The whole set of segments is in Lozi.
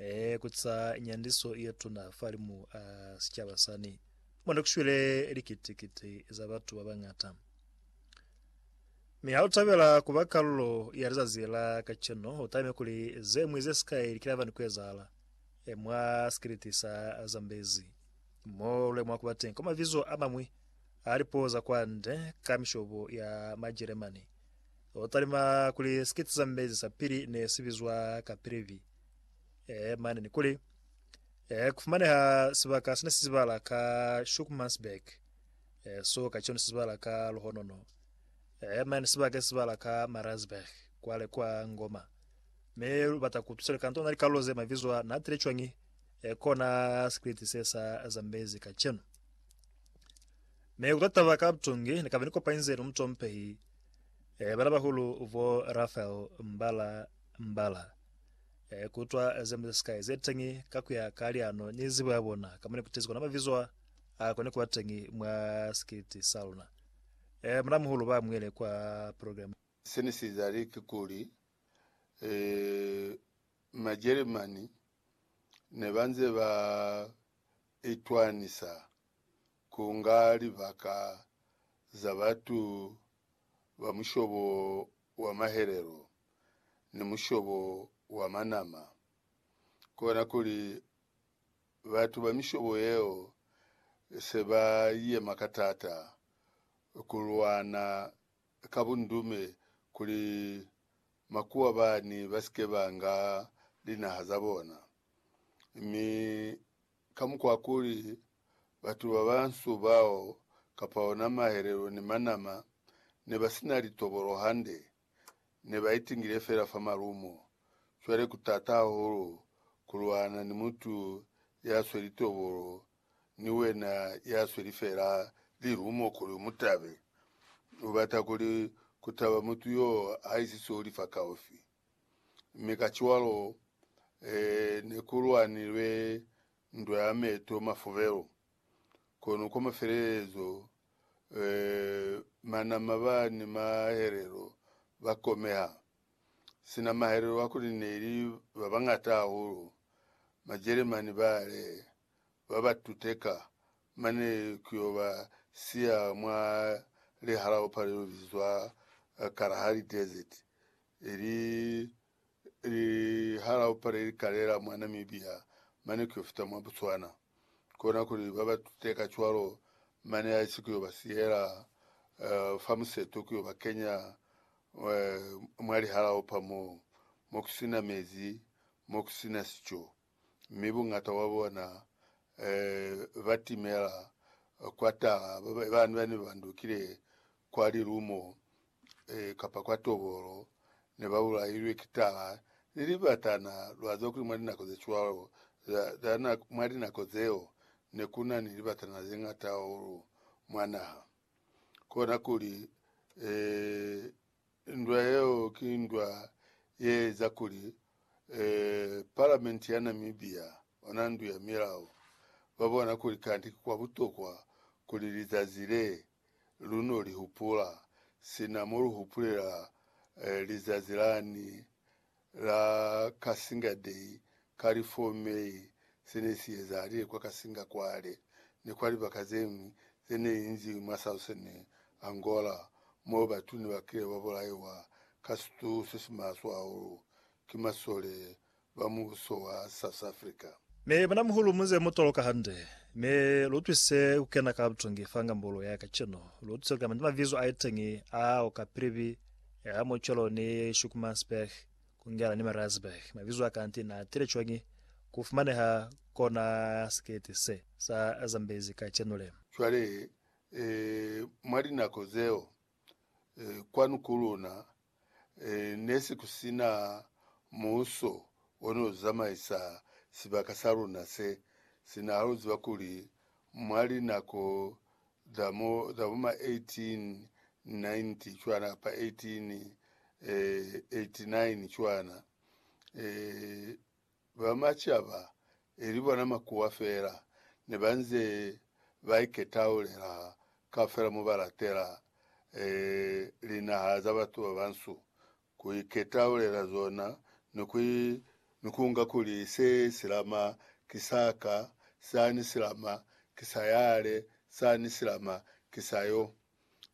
Ee, ku ca nyandiso ye tuna fahalimu a sicaba sani, mo ne ku shwile likiti-kiti za batu ba bañata. Mi ha u tabela ku ba kalulo ya lizazi la kacenu, u talime kuli ze ñwi ze sikai li kila fani ku ezahala mwa sikiliti sa Zambezi, mo lu lemuha ku ba teñi kwa mabizo a mañwi a lipuo za kwande ka mishobo ya Majeremani. U talima kuli sikiti Zambezi sa pili ne si bizwa Kaprivi. eh, mane ni kuli eh, kufumaneha sibaka sine sizibala ka Shukmansberg eh, so ka chone sizibala ka Luhonono eh, mane sibaka sizibala ka Marazberg kwale kwa Ngoma me lubata kutusele kanto na likalo ze mavizwa na tile chwangi eh, kona sikiliti se sa zambezi ka cheno me kutataba ka butongi ni kabe ni kopanyize no mutompehi eh, bana bahulu vo Rafael Mbala mbala, kutwa zilimo zesikai zeteñi kakuya ka liano ni zibo yabona, kamo nekutezi kona mabizo a kone kuba teñi mwa sikiliti saluna. Muna-muhulu ba muele kwa program. Sene siezahali kikuli, Majeremani nebanze ba itwanisa kunga libaka za batu ba mushobo wa mahelelo ni mushobo wa manama, kona kuli batu ba mishobo yeo se ba yema ka taata ku lwana ka bundume kuli makuwa bani ba si ke ba nga linaha za bona, mi ka mukwa kuli batu ba bansu bao kapa ona mahelelo ni manama ne ba si na litobolo hande, ne ba itingile fela fa malumo. Cwale ku t'ata hahulu ku lwana ni mutu ya swe litobolo ni wena ya sweli fela lilumo kuli u mu tabe. U bata kuli ku taba mutu y'o ha isi seo li fakaufi. mi kacwalo ne ku lwanilwe ndwa ya meto mafubelo. Kono kwa mafelelezo, manama ba ni mahelelo ba komeha. Sina mahelelo a kuli ne li ba bañata hahulu, Majeremani bale ba ba tuteka mane ku yo ba siya mwa lihalaopa le bizwa Kalahari Desert, ili lihalaopa le li kalela mwa Namibia mane ku yo fita mwa Botswana. Kona kuli ba ba tute kacwalo mane haisi ku yo ba siyela fa museto ku yo ba kenya mwa lihalaopa mo ku si na mezi, mo ku si na sico. mi bungata wa bona ba timela kwa tala, ba ne ba ndukile kwa lilumo kapa kwa tobolo, ne ba bulailwe ki tala ni libatana. Lwa ziba kuli mwa linako ze cwalo, mwa linako zeo, ne ku na ni libatana ze ñata hahulu mwa naha. Kona kuli, Ndwa yeo ki ndwa ye eza kuli Palamenti ya Namibia ona Ndu ya Milao ba bona kuli kanti ki kwa butokwa kuli lizazi le lu no li hupula sina mo lu hupulela lizazi lani la Kasinga Day ka li 4 May se ne si ezahalile kwa Kasinga kwale ni kwa libaka ze ñwi ze ne li nzi mwa Southern Angola mo batu ne ba kile ba bulaiwa ka situ se si maswe hahulu ki masole ba mubuso wa South Africa. Me mwanamhulu muze mu toloka hande, me lu twise ku kena ka butongi fa ngambolo ya kacenu. Lu tuse ku kama ni mavizo a iteñi a o kapilibi Ya mo cwalo ni Schoenemannsberg, Kungela ni Mariazburg. Mabizo a kanti na tile cwañi ku fumaneha kona sikete se sa Zambezi kacenu le? Cwale, eh, mwa linako zeo, eh, kwanu ku luna, eh, ne si ku sina muuso o ne u zamaisa sibaka sa luna se sina. Ha lu ziba kuli mwa linako za mo za bo ma 1890 cwana kapa 1889 cwana, e, ba macaba, ili bona makuwa fela, ne ba nze ba iketaulela kaufela mo ba latela, e, linaha za batu ba bansu, ku iketaulela zona ni ku ni ku nga kuli se silama ki sa ka, sa ni silama ki sa yale, sa ni silama ki sa yo.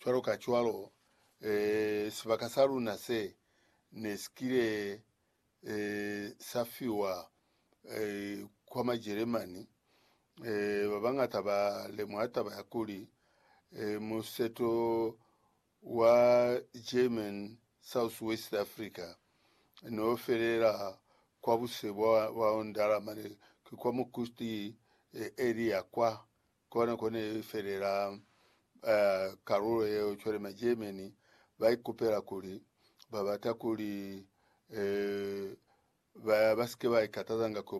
Cwalokacwalo, eh, sibaka sa luna se ne si kile eh, sa fiwa eh, kwa Majeremani, eh, ba bañata ba lemuha taba ya kuli eh, museto wa German Southwest Africa n'o felela kwa buse bwa Ondala mane ki kwa Mukusti area kwa, kona ko ne i felela kalulo yeo. Cwale ma German ba ikupela kuli ba bata kuli ba ba sike ba ikatazanga ku